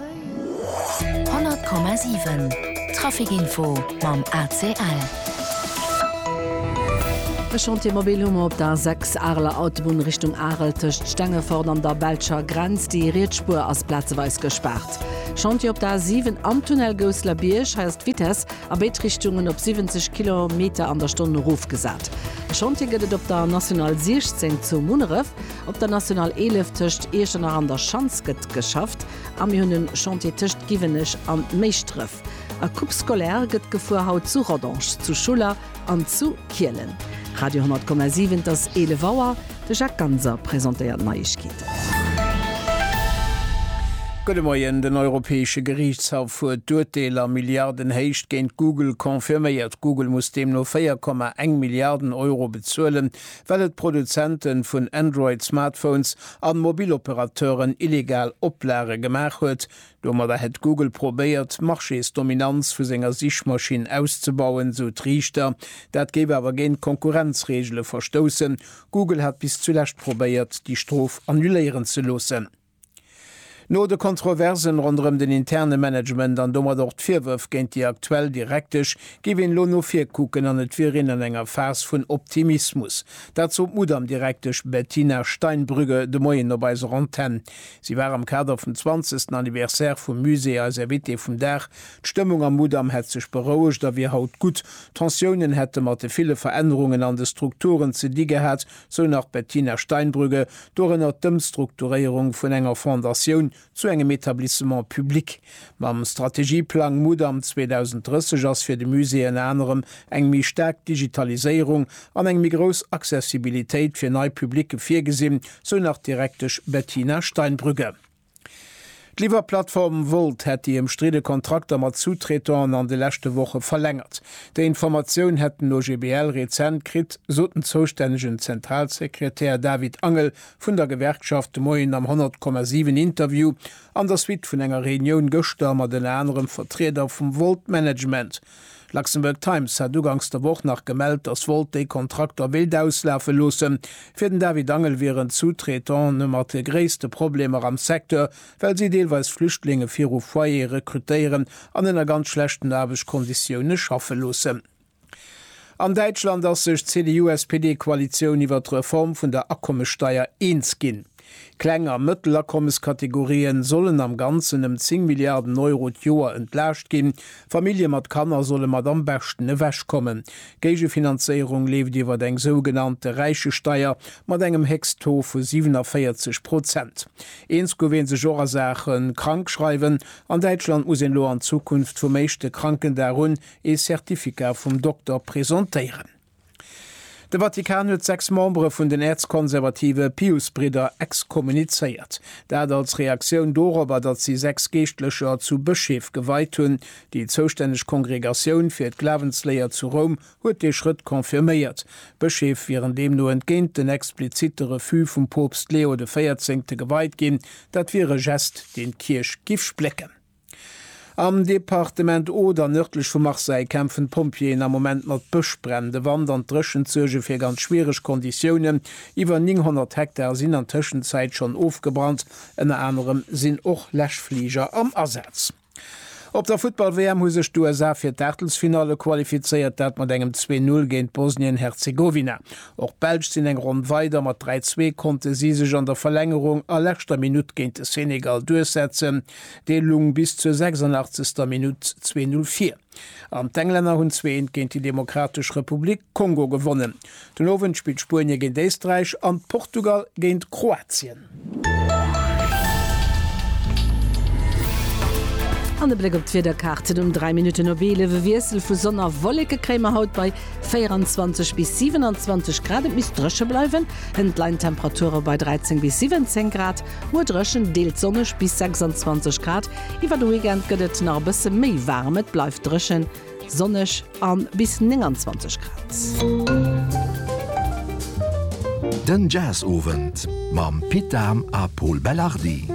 100,7 Trafic Info mam ACL. E Chantier mobil hu mer op der A 6, Areler Autobunn Richtung Arel, tëscht Stengefort an der belscher Grenz. Déi riets Spuer ass plazeweis gespaart. Chantier op der A 7, am Tunnel Gousseler-Bierg. Hei ass d'Vitess a béid Richtungen op 70 Kilometer an der Stonn erofgesat. E Chantier gëtt et op der National 16 zu Munneref. Op der National 11 tëscht Iechternach an der Schanz gëtt geschafft a mir hunn e Chantier tëscht Giwenech an Méischdref. A Coupe scolaire gëtt gefuer, haut zu Rodange, zu Schuller an zu Kielen. Radio 10,7, et ass 11 Auer, de Jacques Ganser presentéiert d'Neiegkeeten. Gudde Moien, Den Europäesche Geriichtshaff huet d'Urteel a Milliardenhéicht géint Google confirméiert. Google muss deemno 4,1 Milliarden Euro bezuelen, well et Produzente vun Android-Smartphones an Mobiloperateuren illegal Oplage gemaach huet. Domadder hätt Google probéiert, d'Marchésdominanz vu senger Sichmaschinn auszebauen, sou d'Riichter. Dat géif awer géint d'Konkurrenzreegele verstoussen. Google hat bis zulescht probéiert, déi Strof annuléieren ze loossen. No de Kontroversen ronderëm den interne Management an domat och d'Virwërf géint déi aktuell Direktesch, géif een elo no vir kucken an et wier een an enger Phas vun Optimismus. Dat sot d'Mudam-Direktesch Bettina Steinbrügge de Moien op eiser Antenn. Si war am Kader vum zwanzegsten Anniversaire vum Musée eis Invitée vum Dag. D'Stëmmung am Mudam hätt sech berouegt a wier haut gutt. Tensiounen hätte mat de ville Verännerungen an de Strukturen ze di gehat, sou nach d'Bettina Steinbrügge, dorënner d'Ëmstrukturéierung vun enger Fondatioun zu engem Etablissement public. Mam Strategieplang Mudam 2030 ass fir de Musée ënner anerem eng méi staark Digitaliséierung an eng méi grouss Accessibilitéit fir nei Publicë virgesinn, sou nach d'Direktesch Bettina Steinbrügge. D'Liwwerplattform Wolt hätt déi ëmstridde Kontrakter mat Sous-Traitant'en an de leschte Woche verlängert. Déi Informatioun hätt den OGBL rezent kritt, sot den zoustännegen Zentralsekretär David Angel vun der Gewerkschaft de Moien am 100,7 Interview an der Suite vun enger Reunioun gëschter mat ënner anerem Vertrieder vum Wolt-Management. D'Luxembourg Times hat uganks der Woch nach gemellt, datt Volt déi Kontrakter wéilt auslafe loossen. Fir den David Angel wieren d'Sous-traitante mat de gréisste Problemer am Secteur, well si deelweis Flüchtlinge viru Foyere rekrutéieren an ënner ganz schlechten Aarbechtskonditioune schaffe loossen. An Däitschland ass sech d'CDU-SPD-Koalitioun iwwer d'Reform vun der Akommessteier eens ginn. Kleng a Mëttelakommeskategorien sollen am Ganzen ëm 10 Milliarden Euro d'Joer entlaascht ginn. Famillje mat Kanner solle mat am beschten ewechkommen. D'Géigefinanzéierung leeft iwwer eng sougenannte Räichesteier mat engem Héchsttaux vu 47 Prozent. Eens gouf ee sech och a Saache Krankschreiwen. An Däitschland muss een elo an Zukunft vum éischte Krankendag un ee Certificat vum Dokter presentéieren. De Vatikan huet sechs Membere vun den äerzkonservative Piusbridder exkommunizéiert. Dat als Reaktioun dorobber, datt si sechs Geeschtlecher zu Bëscheef geweit hunn. Déi zoustänneg Kongregatioun fir d'Glawensléier zu Roum huet dee Schrëtt confirméiert. D'Bëscheef wieren deemno entgéint den explizitte Refus vum Poopst Leo de Véierzéngte geweit ginn. Dat wier e Gest, deen d'Kierch giff splécken. Am Departement Oder, nërdlech vu Marseille, kämpfen d'Pompjeeën am Moment mat Bëschbränn. De Wand an d'Dréchent suerge fir ganz schwiereg Konditiounen. Iwwer 900 Hektar sinn an Tëschenzäit schonn ofgebrannt. Ënner anerem sinn och Läschfliger am Asaz. Op der Futtball-WM hu sech d'USA fir d'Aachtelsfinalle qualifizéiert, dat mat engem 2, 0 géint Bosnien-Herzegowina. Och d'Belsch sinn eng Ronn weider. Mat 3, 2 konnte si sech an der Verlängerung a leschter Minutt géint de Senegal duerchsetzen. Dee lung bis zur 86. Minutt 2-0 vir an d'Englänner hunn zweeënt géint déi Demokratesch Republik Kongo gewonnen. Den Owend spillt Spuenie géint Éisträich an Portugal géint Kroatien. An e Bléck op d'Wiederkaarten, Um 3 Minutten op 11 e Wiessel vu Sonn a Wolleke kréie mer haut bei 24 bis 27 Grad. Et misst dréche bleiwen, hënt leien d'Temperature bei 13 bis 17 Grad. Muer dréchen, deels sonneg bis 26 Grad. Iwwer de Weekend gëtt et nach e bësse méi waarem, et bleift dréchen, sonneg a bis 29 Grad. Den Jazzowend mam Pit Dahm a Pol Belardi.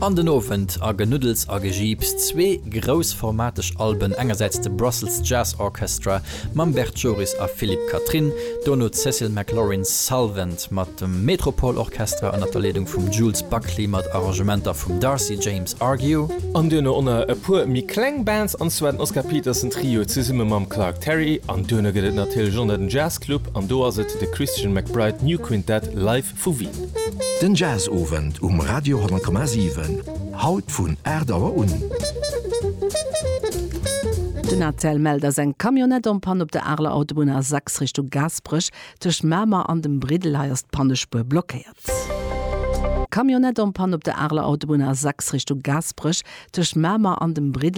An den Owend a Genuddels a Gejiips, zwee groussformateg Alben, engersäits de Brussels Jazz Orchestra Mam Bert Joris a Philippe Catherine, dono d'Cecil McLorin Salvant mat dem Metropole Orchestra ënnert der Leedung vum Jules Buckley mat Arrangementer vum Darcy James Argue. An duerno onner e puer méi kleng Bands, an zwar den Oscar Peterson Trio zesumme mam Clark Terry, an duerno gëtt et natierlech onner den Jazz Club, an do ass et de Christian McBride New Quintet Live Vu Wien. Den Jazzowend um Radio 10,7, haut vun 8 Auer un. Den ATL mellt, dass eng Camionnette en panne op der Areler Autobunn A6 Richtung Gaasperech. Tëscht Mamer an dem Briddel, hei ass d'Pannespuer blockéiert. Camionnette en panne op der Areler Autobunn A6 Richtung Gaasperech. Tëscht Mamer an dem Briddel.